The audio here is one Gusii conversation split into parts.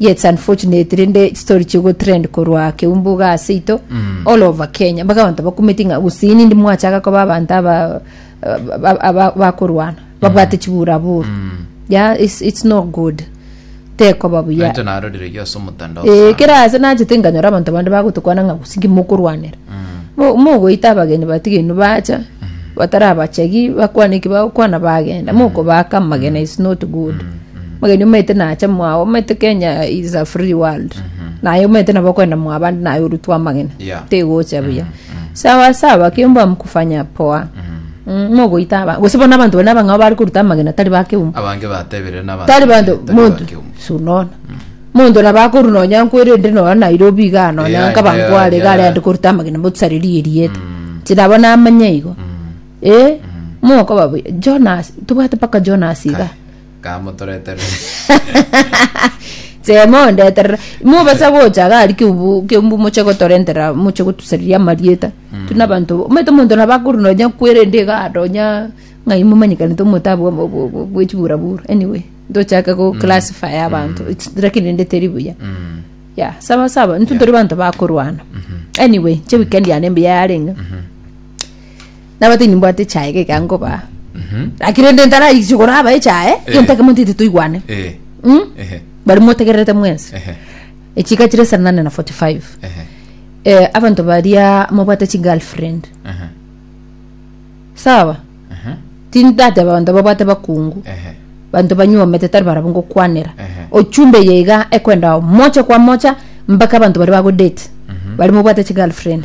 Yet unfortunate rende chitori chigo trend korwa keumbuga ase ito all over Kenya mpaka abantu bakumeti nga gusini ndi mwachaga koba abantu aba aba- aba- bakorwana babwate chibura buru yeah it's, it's not good tekoba buya Naito narorirekio ase omotandao Eh, sana. kera ase nachete nkanyora abanto bande bagotukwana nga gusiki mokorwanera Mo- mogoita abageni batigenu bacha batarabachagi bakwana eki bagokwana bagenda mokobaka amagena is not good Omogeni omanyete nacha mwao, omanyete Kenya is a free world. Naye omanyete nabo okoenda mwabande naye orutwe amagena. Yeah. Tegocha buya. Sawa sawa, kiomba mkufanya poa. Mm, mogoita aba. Gose bono abanto bane abang'ao bare koruta amagena tari bakeumba. abange bateberere na tari bantu batari muntu bakeumba. sunona muntu nabo akoru nonya nkwerende nonya nairobi iga Yeah, nonya yeah, nkabankware iga yeah. aria ande koruta amagena motusaririe erieta nche nabo namanya igo ee mokoba buya jonas tobwate mpaka jonas iga kamotoreterere semo ondeterera mobasa gocha gari kiubu kiumbu moche gotorentera moche gotusariria amarieta tuna bantu omanyete omonto nabo akorwa nonya kwerende igado onya ng'ai momanyekanete omotabu obo- obo- obo- bwechibura bura anyway ntochake go classify abanto It's- lakini rende teri buya Mm. ya sawa sawa ntu tori banto bakorwana anyway che weekend yane mbuya yarenge Nabo tinimbwate echae iga iga nkobaa. Gaki rende ntararigie koraba echae, Eh. egento ekemo ntete toigwane. Eh, Mm? ehe, Bari motegererete mwensi. ehe, Echiika chire saa nane na 45. ehe, Eh, abanto baria mobwate chi girlfriend. ehe, Sawa? ehe, Tindateba abanto babwate bakungu. ehe, bantu banyuomete tari barabo ngokwanera Ehe. ochumbe eye iga ekwenda mocha kwa mocha mpaka abanto bari bago date bari mobwate chi girlfriend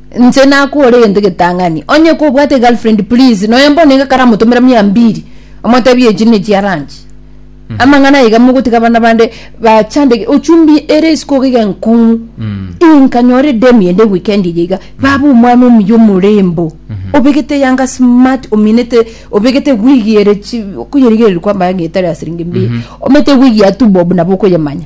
Nche nakoore egento getang'ani. Onye kobwate girlfriend please nonya mbone iga karamotomera mia mbiri omotebie echi nechi ya lunch. Amang'ana aiga mogotiga abana bande bachandege ochumbi ere isiko iga iga enkong'u. Inkanyora edemi ende weekend eye iga baba omwana omuya omorembo obegete yanga smart ominete obegete wig ere chi okoyerigereria kwambaye ng'a etari ya siringi mbiya. Omete wig ya tubob nabo okoyemanya.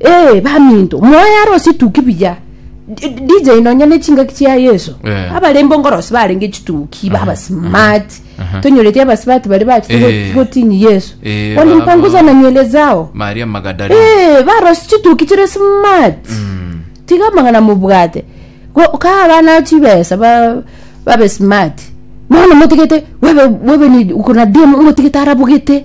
Ee, baminto, moe aro chituki buya. D- DJ nonya ne chingaki chia Yeso. Eh. Abarembo ngorosi barenge chituki, baba smart. aha. Tonyoreti aba smart bari bachite Eh. gotinyi Yeso. Eh, Walimpanguza babo. na nywele zao. maria magadari Eh, barosi chituki chire smart. Tiga amang'ana mobwate. Go- Ka abana chibesa ba babe smart. Mwana motigete webe webe ni ukona dem motigete arabugete.